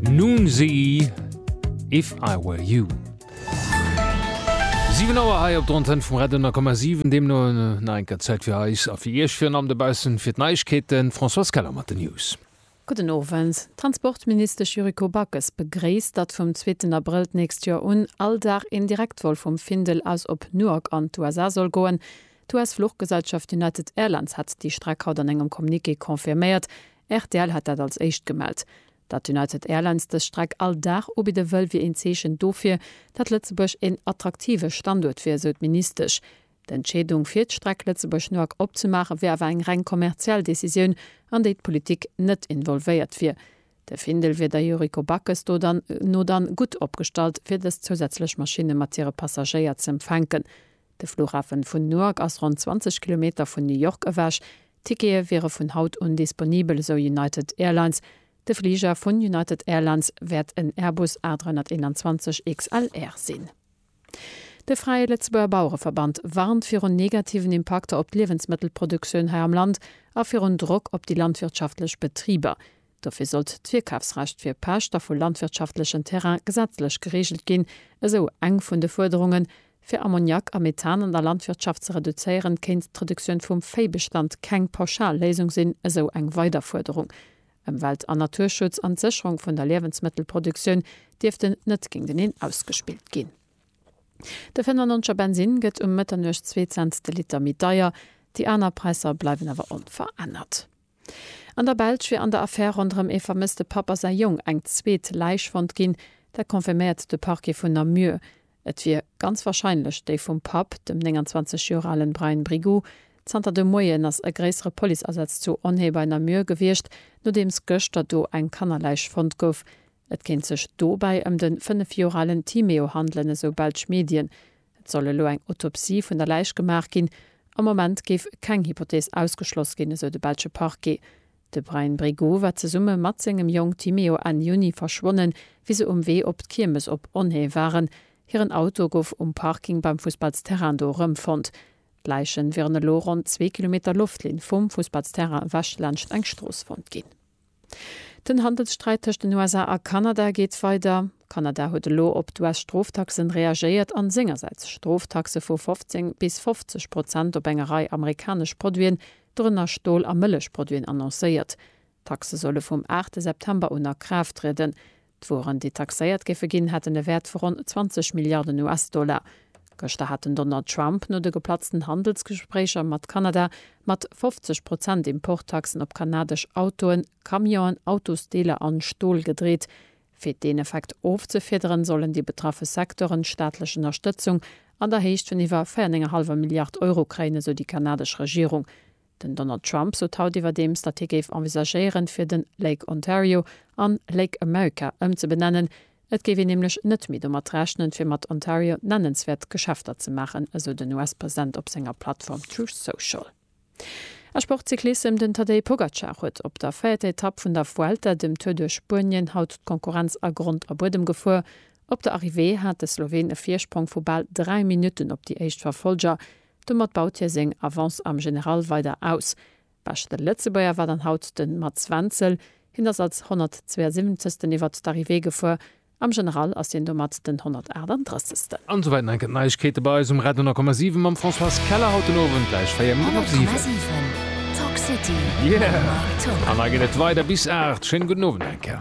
Nun sie If I Were You. 7 Auer hei op der Antenn vum Radio 10,7, deemno nach eng Kéier Zäit fir eis a fir Iech, virun allem dobaussen, fir d'Neiegkeeten. D'Françoise Keller mat den News. Gudden Owend. D'Transportministesch Yuriko Backes begréisst, datt vum zweeten Abrëll d'nächst Joer un all Dag een Direktvol vum Findel aus op Newark an d'USA soll goen. D'US-Fluchgesellschaft United Airlines hat déi Streck haut an engem Communiqué confirméiert. Rtl hat dat als éischt gemellt. Datt United Airlines dës Streck all Dag ubidde wëll, wier een Zeechen dofir, datt Lëtzebuerg een attraktive Standuert wier, esou d'Ministesch. D'Entscheedung fir d'Streck Lëtzebuerg-Newark opzemaache wier awer eng reng kommerziell Decisioun, an déi d'Politik net involvéiert wier. De Findel wier der Yuriko Backes do no dann gutt opgestallt, fir dës zousätzlech Maschinne mat hire Passagéier z'empfänken. De Flughafen vun Newark ass ronn 20 Kilometer vun New York ewech. D'Tickete wiere vun haut un disponibel, esou United Airlines. De Fliger vun United Airlines wäert en Airbus A321 XLR sinn. De Fräie Lëtzebuerger Bauereverband warnt virun negativen Impakter op d'Liewensmëttelproduktioun hei am Land a virun Drock op déi landwirtschaftlech Betriber. Dofir sollt d'Virkafsrecht fir Pächter vu landwirtschaftlechen Terrain gesetzlech gereegelt ginn, esou eng vun de Fuerderungen. Fir Ammoniak a Methan an der Landwirtschaft ze reduzéieren, kéint d'Reduktioun vum Véibestand keng pauschal Léisung sinn, esou eng weider Fuerderung. Ëmwelt an Naturschutz an d'Sécherung vun der Liewensmëttelproduktioun dierften net géinteneen ausgespillt ginn. De 95 Bensinn gëtt um Mëtternuecht zwee Cent de Liter méi deier, déi aner Präisser bleiwen awer onverännert. An der Belsch wier an der Affär ronderëm ee vermësste Papp a säi Jong eng zweet Läich fonnt ginn. Dat confirméiert de Parquet vun Namur. Et wier ganz warscheinlech déi vum Papp, dem 29 Joer alen Brian Brigoux. Zanter de Moien ass e gréissere Policeasaz zu Onnhé bei Namur gewiescht, nodeems gëschter do eng Kannerläich fonnt gouf. Et kéint sech dobäi ëm de fënnef Joer alen Timéo handelen, esou belsch Medien. Et soll elo eng Autopsie vun der Läich gemaach ginn. Am Moment géif keng Hypothees ausgeschloss ginn, esou de belsche Parquet. De Bryan Brigaud war zesumme mat sengem Jong Timéo Enn Juni verschwonnen, wéi se um Wee op d'Kiermes op Onhée waren. Hiren Auto gouf um Parking beim Fussballsterrain do erëmfonnt. D'Läiche wieren elo ronn zwee Kilometer Loftlinn vum Fussballsterrain ewech laanscht eng Strooss fonnt ginn. Den Handelssträit tëscht den USA a Kanada geet weider. Kanada huet elo op d'US-Stroftaxen reagéiert an sengersäits Stroftaxe vu 15 bis 50 Prozent op enger Rei amerikanesch Produiten, dorënner Stol a Mëllechproduiten, annoncéiert. D'Taxe solle vum 8 September un a Kraaft trieden. D'Wueren, déi taxéiert géife ginn, hätten e Wäert vu ronn 20 Milliarden US-Dollar. Gëschter hat den Donald Trump no de geplatzten Handelsgespréicher mat Kanada mat 50 Prozent Importtaxen op kanadesch Autoen, Camionen, Autosdeeler an Stol gedreet. Fir deen Effekt ofzefiederen, sollen déi betraffe Secteuren staatlech Ënnerstëtzung an der Héicht vun iwwer 4,5 Milliard Euro kréien, esou déi kanadesch Regierung. Den Donald Trump sot haut iwwerdeems, datt hie géif envisagéieren, fir den Lake Ontario an Lake America ëmzebenennen. Et géif een nämlech net méi domat rechnen, fir mat Ontario nennenswäert Geschäfter ze maachen, esou den US-President op senger Plattform Truth Social. A Sportcyclissem, Den Tadej Pogacar huet op der véierter Etapp vun der Vuelta, dem Tour duerch Spuenien, haut d'Konkurrenz a Grond a Buedem gefuer. Op der Arrivée hat de Sloween e Virsprong vu bal 3 Minutten op déi éischt Verfollger. Domat baut hie seng Avance am General weider aus. Beschte Lëtzebuerger war dann haut de Mats Wenzel. Hien ass als 172. iwwert d'Arrivée gefuer. Am General ass hien domat den 138. An esou wäit en enken Neiegkeete bei eis um Radio 10,7 mam Françoise Keller haut den Owend gläich 4 Minutten op 7. An da geet et weider bis 8. Schéinen gudden Owend enker.